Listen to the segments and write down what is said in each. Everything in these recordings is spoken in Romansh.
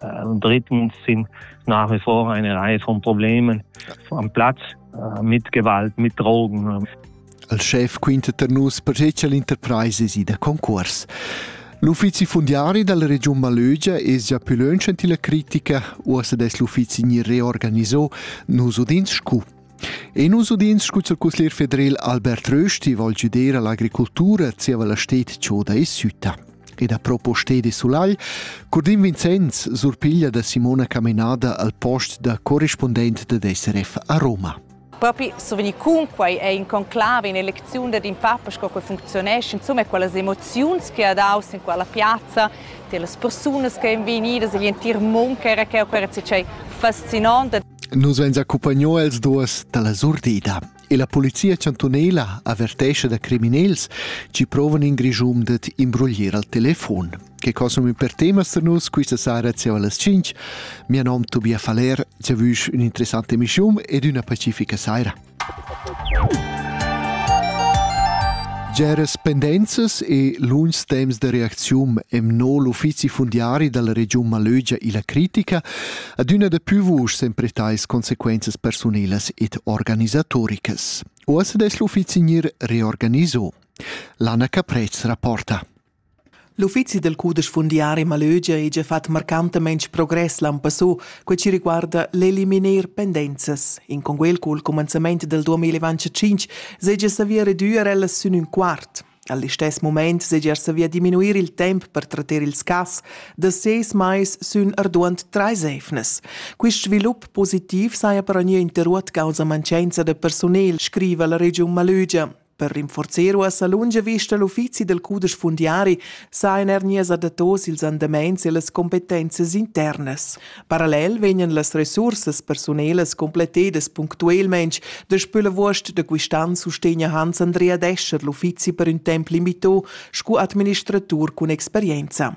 Äh, drittens sind nach wie vor eine Reihe von Problemen am Platz äh, mit Gewalt, mit Drogen. Als chef quinta per nus percetga l'interpresa si da concurs. L'uffizi fundiari della Region Malögia es già più lönch enti la critica, uossa des l'uffizi ni reorganisò, nus udins scu. E nus udins scu il cusglier federel Albert Rösti vol giuder all'agricoltura zieva la sted choda e sütta. Ed a propo sted e sulagl, Curdin Vincenz surpiglia da Simona Camenada al post da corrispondent da SRF a Roma. Propi survegni cunquai è in conclave in elecziun dad in papa sco che funzionesce, insomma quelle emozioni che ha dato in quella piazza, delle persone che sono venute, l'intero mondo che era che era fascinante. Nus vein accumpagnau els duas dalla surdida e la polizia chantunela avertescha da criminals chi provan in Grischum dad imbroglier al telefon. Che consum per temas da nus quista sera zieva las 5. Mia nom Tobias Faller, giavüsch ün'interessante emissiun ed üna pacifica saira. Geras pendenzas e lungs temps da reacziun emno l'uffizi fundiari dalla regiun Malögia illa critica adüna da pü vusch sempre tais consequenzas persunelas ed organisatoricas. Uossa dess l'uffizi gnir reorganiso. L'Anna Caprez rapporta. L'uffizi dal cudesch fundiari Malögia ha gia fatg marcantamein progress l'an passù, quei ci riguarda l'eliminar pendenzas. In conguel cul cumenzament del 2025 segia savia reduir ellas sün ün quart. Al istess moment segia savia diminuir il temp per tratter ils cas da seis mais sün arduant trais eivnas. Quist svilup positiv saja per ogni interruot causa mancenza da personel, scriva la regiun Malögia. Per rinforzar uossa lunga vista l'uffizi del cudesch fundiari sa in er nies adattos ils andamaints e las competenzas internas. Parallel vegnan las resursas personelas complettedas punctuelment daspö la vuost da quistan sustegna Hans Andrea Descher l'uffizi per ün temp limito scu administratur cun experienza.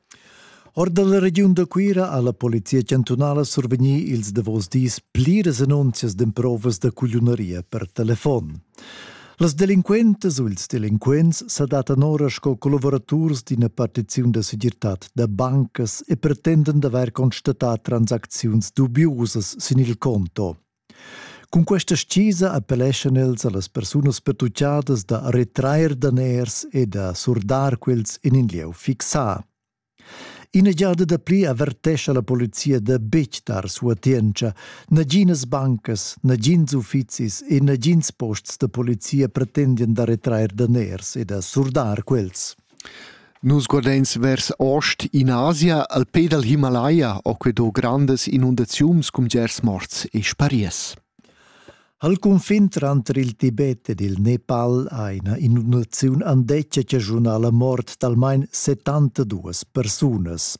Or dalla regiun da Cuira ha la polizia chantunala survegnì ils davos dis pliras annunzias d'emprovas da cugliunaria per telefon. Las delinquentas u ils delinquents sa dattan ora sco collavuraturs d'ina partiziun da segirtad da bancas e pretenden d'avair constatà transacziuns dubiusas sin il conto. Cun questa stgisa appelleschan els a las persunas pertuchadas da retrair daners e da surdar quels in in lieu fixà. Ina giada dapli avertescha la polizia da betg dar suatientscha. Naginas bancas, nagins uffizis e nagins posts da polizia pretendian da retrair daners e da surdar quels. Nus guardeins vers ost in Asia al pe dal Himalaya ho que do grandas inundaziuns cun bgers morts e spariers. Al cunfin tranter il Tibet ed il Nepal ha ina inundaziun andetga chaschunà la mort d'almain 72 persunas.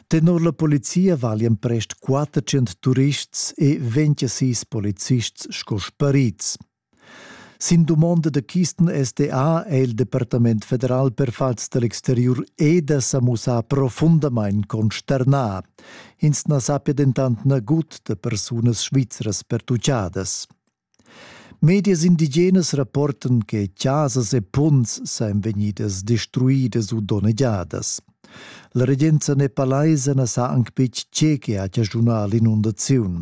Tenor la polizia valian prest 400 turists e 26 policists sco sparids. Sin dumonda da Kisten SDA è il Departament federal per fatgs da l'exteriur EDA sa mussà profundamain consternà. Ins na sappia dentant nagut da persunas svizras pertuchadas. Medias indigenas rapportan che chasas e punts sajan vegnidas destruidas u donnegiadas. La regenza nepalaisa na sa anc betg tge che ha chaschunà l'inundaziun.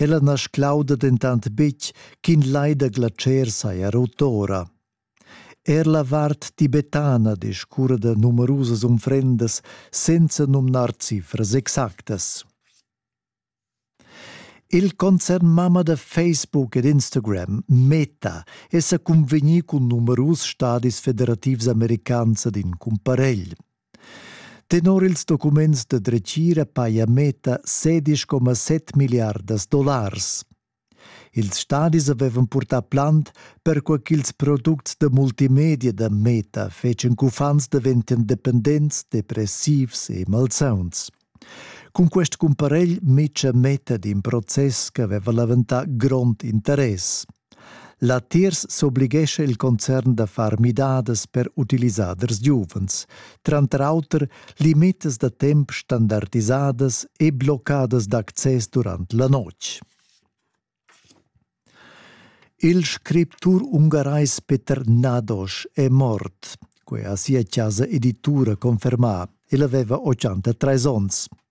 Ella na sclauda dentant betg ch'in lai da glatscher saja rut ora. Er la vart tibetana discurra da numerusas unfrendas senza numnar cifras exactas. Il concern mamma da Facebook ed Instagram, Meta, è sa cunvegnì cun numerus stadis federativs americans ad in cumparegl. Tenor ils documents da dretgira paja Meta 16,7 milliardas dollars. Ils stadis avevan purtà plant, perquai ch'ils products da multimedia da Meta fetschan ch'uffants daventian dependents, depressivs e malsauns. Cun quest cumparegl mitscha Meta d'in process ch'aveva leventà grond interess. Latiers s'oblighescha il concern da far midadas per utilisaders giuvens, tranter auter limitas da temp standardisadas e bloccadas d'access durant la notg. Il scriptur ungarais Peter Nadosch è mort, quai ha sia chasa editura confermà. El aveva 83 onns.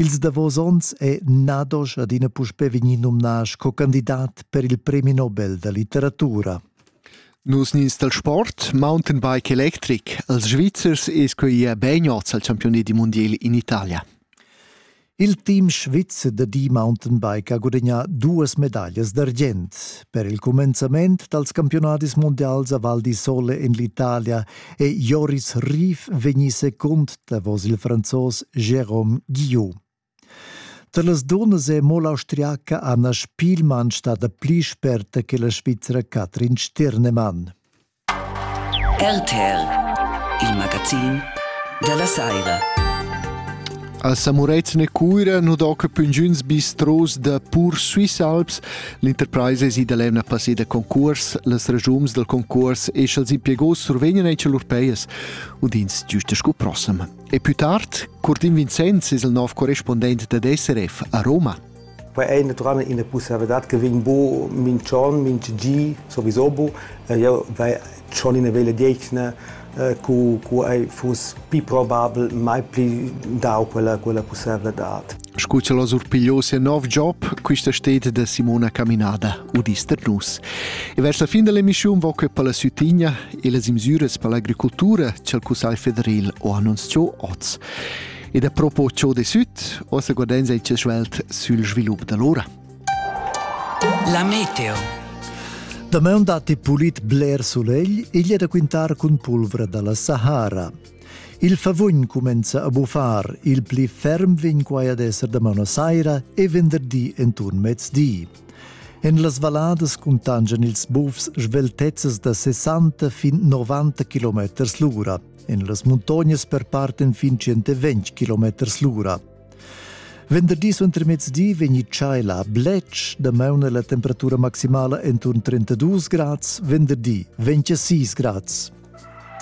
Ils davos onns è Nadosch adina puspè vegnì numnà sco candidat per il premi Nobel da litteratura. Nus nins dal sport, mountainbike electric, als Svizzers es quei ia beiniots al campioni di mondial in Italia. Il team svizzer da di mountainbike ha gudagnà duas medaglias d'argient. Per il cumenzament dals campionadis mondials a Val di Sole en l'Italia e Joris Rief vegni secund davos il franzos Jérôme Guillot. Tar las dunnas è mo l'austriaca Anna Spielmann stada pli sperta che la Svizra Katrin Stirnemann. RTL, il magazin della Saira. Al Samureizne Cuira nu doca püngiüns bistros da pur Swiss Alps L'enterpraisa esi da l'emna passeda concurs, las regiums dal concurs e sch'els impiegos survegnan echa lur peias, udins giusta scu prossem. E più tard, Curtin Vincenz es il nov correspondent dad SRF a Roma. Poi è natural ina possibilità che vegn bo minch'on, minch'gi, sowieso bo. Io vai schon in vele degna eh, cu, cu ei fuss pi probabel mai pli dau quella, quella possibilitad. Scu ce l'ho surpigliò sia nov job, quista stet da Simona Caminada, udista nus. E verso la fin dell'emissione vo che per la Sütigna e le imsüres per l'agricoltura c'è il Cussagl federal ho annunziato oz. E da propo ciò de süt, ossa guardenza il cesvelt sul svilup dell'ora. La meteo. Damaun datti pulit bler sulegl, igl è da quintar cun pulvra da la Sahara. Il favugn cumenza a buffar, il pli ferm vegn quai ad esser damaun a saira e venderdi enturn mezdi. En las valladas cuntangian ils bufs sveltezzas da 60 fin 90 km l'ura. En las muntognas perparten fin 120 km l'ura. Venderdi suentermezdi vegni tschai la bletsch da mauna la temperatura maximala enturn 32 grads, venderdi 26 grads.